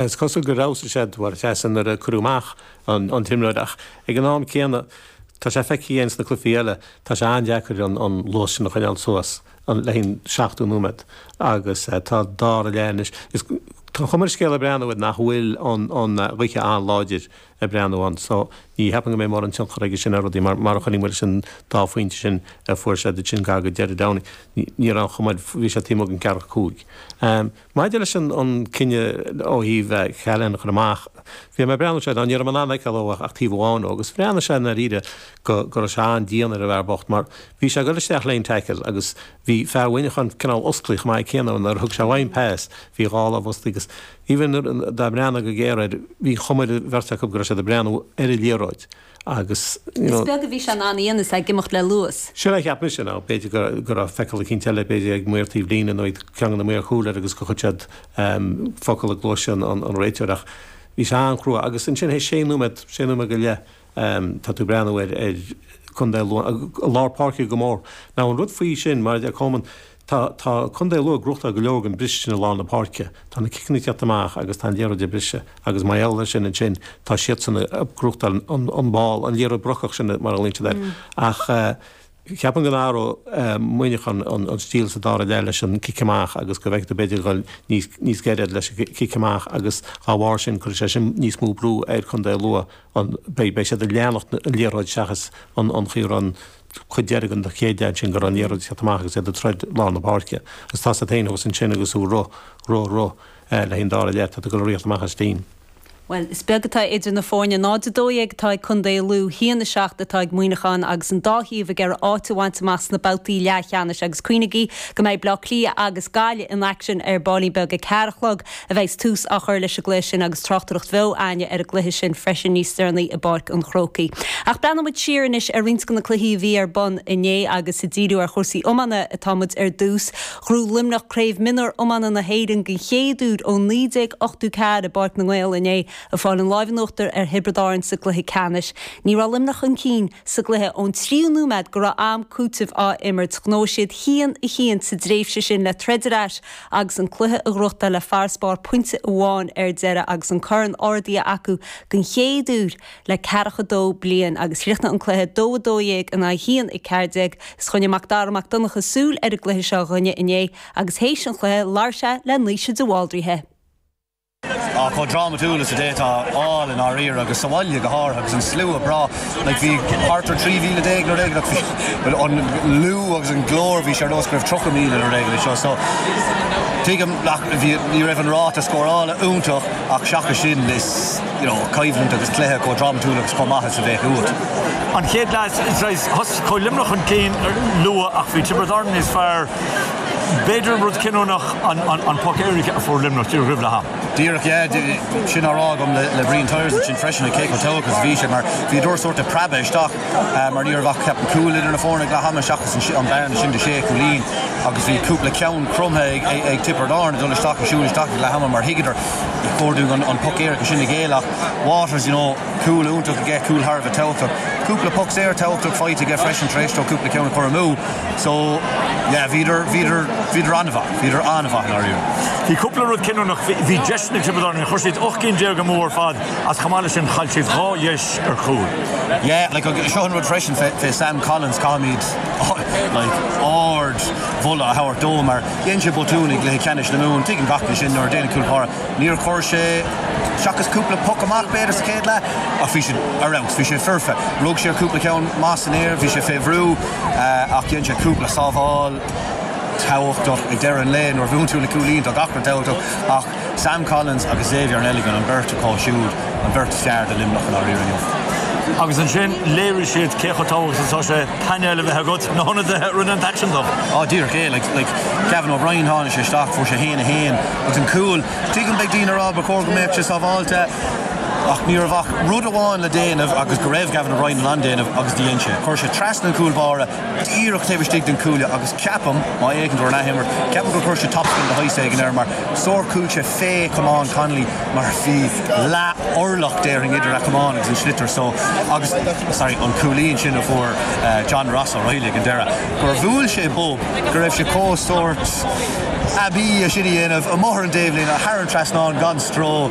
Is cosúil gur fheabhsaigh sé dá chleasa nuair a cuireadh amach an t-imreoir ach ag an am céanna tá sé feicthe againn sna cluichí eile, tá sé an-deacair an luas sin a choinneáil suas le haon 70 nóiméad agus tá sé dá réir anois. Tá an chuma ar an scéal ag breathnú air nach bhfuil an ghaoth an-láidir ag breathnú ann so ní cheapaim go mbeidh mórán tionchar aige sin ar rudaí mar má choinnigh muid leis an dá phointe sin a fuair sé duit sin gar go deireadh an ndóigh, ní raibh an chuma air, bhí sé taobh amuigh den cheathracha cúig. Maidir leis an an cinneadh ó thaobh Challain a chur amach, bhí mé ag breathnú is, ní raibh mé in ann fheiceáil ach ó thaobh amháin dhó agus bhreathnaigh sé i ndáiríre go go raibh sé an-dian ar an bhfear bocht mar bhí sé ag dul isteach lena tackle agus bhí fear Mhuineacháin cineál osclaí chomh maith céanna nuair a thug sé uaidh an pas, bhí dhá lámh osclaí agus even dá mbreathnófá go géar air bhí an chuma ar an bheirt acu go raibh siad ag breathnú ar an liathróid. agus you know, is beag a bhí sé in ann a dhéanamh is é ag imeacht le luas. Sin a cheap mise, now, b'fhéidir go, go raibh feiceáil eicínt eile b'fhéidir ag maor taobh líne nó ag ceann de na maoir chúil air agus gur chuir siad ehm focal i gcluais an, an, an réiteoir ach bhí sé an-chrua agus ansin théis sé nóiméad, sé nóiméad go leith ehm tá tú ag breathnú ar, ar Contae Lú i lár páirce go mór. Now an rud faoi sin mar a deir Colman, Tá Contae Lú ag gnóthachtáil go leor den bhriseadh i lár na páirce. Tá na ciceanna ag teacht amach agus tá an liathróid ag briseadh agus mar gheall ar sin ansin tá siadsan ag gnóthachtáil an ball, an liathróid brocach sin mar a ghlaonn siad air. Ach ceapaim go n-athróidh Muineachán an stíl sa dara leath leis an cic amach agus go bhfeicfidh tú b'fhéidir iad ag dul níos giorra leis an cic amach agus dá bharr sin cuirfidh sé sin níos mó brú ar Contae Lú, beidh siad ag leanacht an liathróid seachas ag an gcaoi a raibh. chuid deiridh den chéad leath ansin go raibh an liathróid ag teacht amach agus iad ag troid i lár na páirce agus tá siad féin fós ansin agus ú ru ru ru le haghaidh an dara leath tá tú ag dul ag tíocht amach as sin. Bhuel, is beag atá idir na foirne, 0-12 atá ag Contae Lú, 1-7 atá ag Muineachán agus an dá thaobh ag iarraidh áit a bhaint amach sna babhtaí leathcheannais agus cuimhnigí go mbeidh Bleá Cliath agus Gaillimh in aicsean ar baillín beag ag ceathair a chlog. a bheas tús á chur leis an gcluiche sin agus tráchtaireacht bheo againne ar an gcluiche sin freisin níos deireanaí i bPáirc an Chrócaigh. Ach breathnóidh muid siar anois ar roinnt de na cluichí a bhí ar bun inné agus ag díriú ar chúrsaí iomána atá muid ar dtús. Ghnóthaigh Luimneach Craobh Mionúr Iomána na hÉireann den chéad uair ó 1984 i bPáirc na nGael inné ag fáil an láimh in uachtar ar Thiobraid Árann sa gcluiche ceannais. Ní raibh Luimneach chun cinn sa gcluiche ón tríú nóiméad go raibh am cúitimh á imirt. Ghnóthaigh siad cúilín i ndiaidh cúilín sa dtréimhse sin le troid ar ais Agus an cluiche a ghnóthachtáil le farasbarr pointe amháin ar deireadh agus an corn ardaithe acu den chéad uair le ceathracha dó bliain agus chríochnaigh an cluiche 2 12 in aghaidh 1 14. Is choinnigh Macdara Mac Donncha súil ar an gcluiche seo dhúinne inné agus théis an chluiche labhair sé le Naoise de Bháldraithe. Ach chomh drámatúil is a d'fhéadfá a fháil i ndáiríre, agus sa bhaile go háirithe, agus an slua breá, like bhí thart ar 13,000 nuair a éag, like bhí an liú agus an glór, bhí sé ar nós go raibh 30,000 nuair a éag é seo, so tuigim nach, bhí, ní raibh an ráta scórála iontach ach seachas sin is, you know, coimhlint agus cluiche chomh drámatúil agus chomh maith is a bheadh uait. An chéad leath, is right, thosaigh Luimneach chun cinn luath ach bhí Tiobraid Árann níos fearr. B'fhéidir rud cinniúnach an poc éirice a fuair Luimneach díreach roimh leath ama. Díreach, yeah. Sin á rá agam le Brian Tyers ansin freisin cé chomh tábhachtach is a bhí sé mar bhíodar sórt ag preabadh isteach mar ní raibh ach ceapaim cúl idir na foirne ag leath ama seachas an bhearna sin de shé chúilín agus bhí cúpla ceann cromtha ag Tiobraid Árann dul isteach ag siúl isteach ag leath ama mar thuigeadar ag comhordú an poc éirice sin a ghéilleadh Waters, you know. Cúl iontach aige, cúl thar a bheith tábhachtach. Cúpla poc saor tábhachtach faighte aige freisin tar éis dó cúpla ceann a chur amú. So, yeah, bhíodar, bhíodar, bhíodar an-mhaith, bhíodar an-mhaith, i ndáiríre. Bhí cúpla rud cinniúnach, bhí deis ag na Tiobradaigh, chuir siad ocht gcinn déag amú ar fad ach chomh maith leis sin chaill siad dhá dheis ar chúl. Yeah, like agus seo an rud freisin fé, fé Sam Collins caithfimid like ardmholadh a thabhairt dó mar dhein sé botún ag cluiche ceannais na Mumhan, tuigeann gach duine sin nuair a dhéanann cúl báire. Níor chuir sé seachas cúpla poc amach b'fhéidir sa chéad leath ach bhí siad ar fheabhas, bhí sé foirfe. Rug sé ar cúpla ceann maith san aer, bhí sé fé bhrú ach dhein sé cúpla sábháil tábhachtach ag deireadh an lae nuair a bhuann tú le cúilín tá gach ní tábhachtach ach Sam Collins agus Xavier Neligan an beirt acu siúd an beirt is fearr do Luimneach i ndáiríre inniu. Agus ansin léirigh siad cé chomh tábhachtach is atá sé painéal a bheith agat, na hionadaithe a rinne an t-aicsean dom. Á, díreach é, like, like Gavin O'Brien tháinig sé isteach fuair sé haon a haon, Ach an cúl. Tuigim beidh daoine ag rá ba chóir go mbeadh sé sábháilte ach ní raibh ach rud amháin le déanamh agus go raibh Gavin O'Brien in ann déanamh agus dhein sé. Chuir sé trasna an cúl báire díreach taobh istigh den cuaille agus ceapaim, má fhéachann tú ar an athimirt, ceapaim gur chuir sé topspin de shaghas éigin air mar sórt chuaigh sé fé chamán Connolly mar bhí leath orlach déarfainn idir a chamán agus an sliotar so agus, sorry, an cúilín sin a fuair John Ross O'Reilly ag an deireadh gur bhuail sé bob go raibh sé chomh sórt aibí é sin a dhéanamh amuigh ar an dtaobhlíne, thar an trasnán, gan stró.